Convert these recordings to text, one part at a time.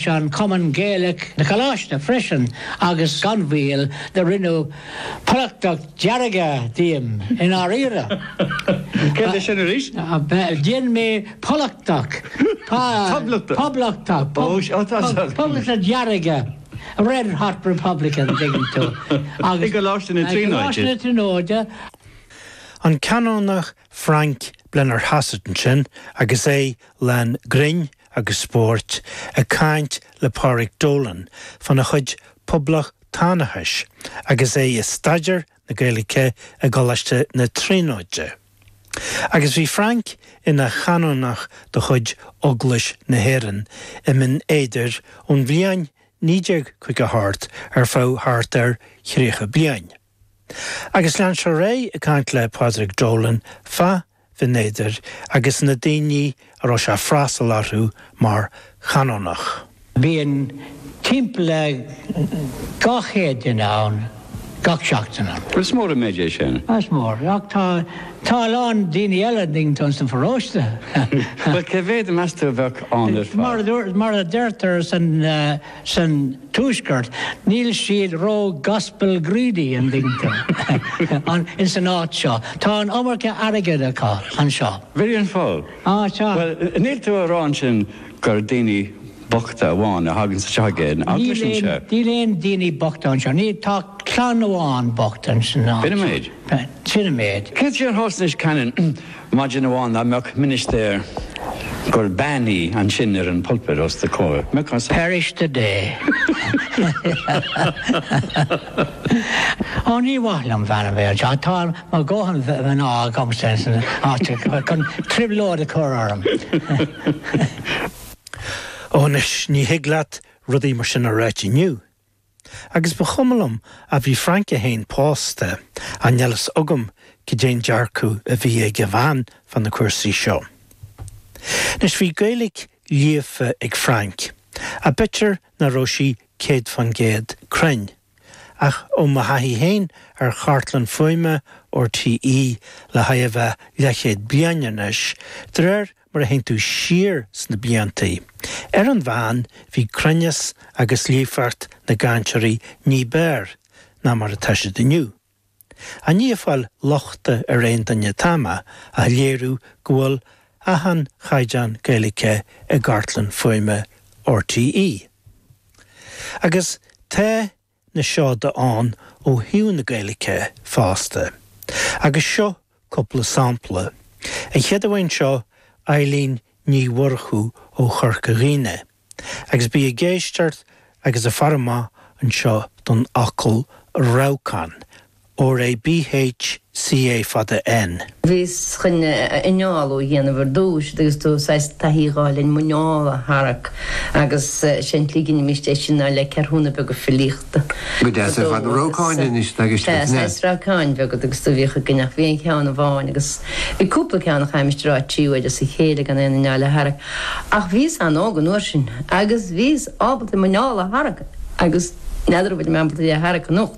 Sa gCumann Gaelach na Coláiste freisin agus gan mhoill do rinneadh Poblachtach Dearg díom i ndáiríre. Céard é sin arís? Dhein mé Poblachtach. Poblachtach. Poblachtach. Poblachtach Dearg. Red Hot Republican, an dtuigeann tú. I gColáiste na Tríonóide. I gColáiste na Tríonóide. An Canónach Frank Blennerhassett ansin agus é lán grinn agus spóirt ag caint le Pádraic Dolan fana chuid poblachtánachais agus é ag staidéar na Gaeilge i gColáiste na Tríonóide. Agus bhí Frank ina chanónach de chuid Eaglais na hÉireann i mBinn Éadair ón bhliain 1950 thart ar feadh thart ar thríocha bliain. Agus lean sé ar aghaidh ag caint le Pádraig Dolan fa Bhinn Éadair agus na daoine a raibh sé ag freastal orthu mar Chanónach. Bíonn timpeall le 200 duine ann gach seachtain ann. Is mór an méid é sin. Is mór, ach tá a lán daoine eile ag baint leis an sa pharóiste. Bhuel, cé mhéad, meas tú, a bheadh ann ar fad? Mar a deirtear san. san tuaisceart, níl siad ró-gospel-greedy, an dtuigeann tú, ins an áit seo. Tá an iomarca airgid acu anseo. B'in é an fáth. Á, tá. Bhuel, níl tú a rá ansin gur daoine bochta amháin a thaganns anseo ag aon eaglais anseo? Níl aon, níl aon daoine bochta anseo. Ní, tá clann amháin bocht ins an áit. B'in an méid? Sin an méid. Cén chaoi ar thosnaís, Canon? Maidin amháin dá mbeadh ministéar gur bean í ansin ar an pulpit os do comhair, mbeadh as. Perish the day. Ó, ní maith liom bean a bheith anseo, tá mo dhóthain mná agamsa insan áit chun trioblóid a chur orm. Ó, anois, ní thig leat rudaí mar sin a ráit inniu. Agus ba chuma liom, ach bhí Frank é féin pósta, níl a fhios agam goidé an dearcadh a bhí ag a bhean fá na cúrsaí seo. Anois, bhí Gaeilge líofa ag Frank, ach b'fhéidir nach raibh sí céad fán gcéad cruinn, ach ó mo thaithí féin ar chartlann fuaime RTÉ le chóir a bheith leathchéad bliain anois, de réir mar a théann tú siar sna blianta. Ar an mheán, bhí cruinneas agus líofacht na gcainteoirí ní b'fhearr ná mar atá siad inniu. Ní ag fáil lochta ar aon duine atá mé ach a léiriú go bhfuil achan chaighdeán Gaeilice i gcartlann fuaime R.T.E. Agus tá a na seoda ann ó thaobh na Gaeilge fosta, agus seo cúpla sampla, an chéad bhean seo, Eibhlín Ní Mhurchú ó Chorca Dhuibhne, agus bí ag éisteart agus ag faire amach anseo don fhocal rabhcán, R A B H C A fada N. Bhíos chun análú a dhéanamh ar dtúis agus tú saghas taithí a dh'fháil ar m'anál a tharrac agus sé an tslí go ndeinimíst é sin ná le ceathrúna beaga filíochta. Go deas ar fad. Rabhcáin anois atá i gceist agat, an ea? Saghas rabhcáin bheaga agus tú bhíodh againn ach bhí aon cheann amháin agus bhí cúpla ceann a chaithimíst a rá trí huaire as a chéile gan aon anál a tharrac ach bhíos an-óg an uair sin agus bhíos ábalta m'anál a tharrac agus n'fheadar an bhfuilim ábalta é a tharrac anocht.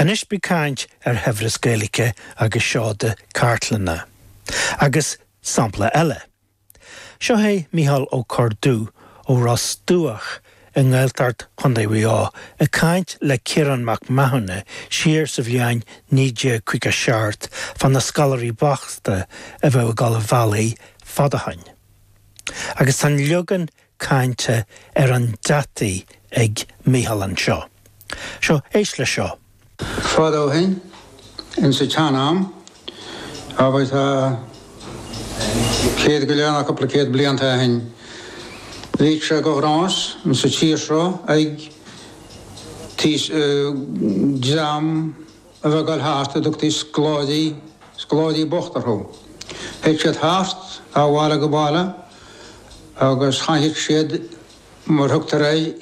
Anois beidh caint ar shaibhreas Gaeilge agus seoda cartlainne. Agus sampla eile. Seo é Micheál Ó Corrduibh ó Ros Dumhach i nGaeltacht Chondae Mhuigh Eo ag caint le Ciarán Mac Mathúna siar sa bhliain 1957 fá na scoláirí bochta a bhíodh ag dul an bhealaigh fad ó shin. Agus tá an leagan cainte ar an deataí ag Micheál anseo. Seo, éist leis seo. Fad ó shin, ins a tsean-am, abair tá céad go leith ná cúpla céad blianta ó shin, bhíodh sé de ghnás ins a tír seo ag, tigh, dream, a bheith ag gabháil thart a dtugtaí scoláirí, scoláirí bochta orthu. Théadh siad thart ó bhaile go baile agus chaitheadh siad, mar thugtar air,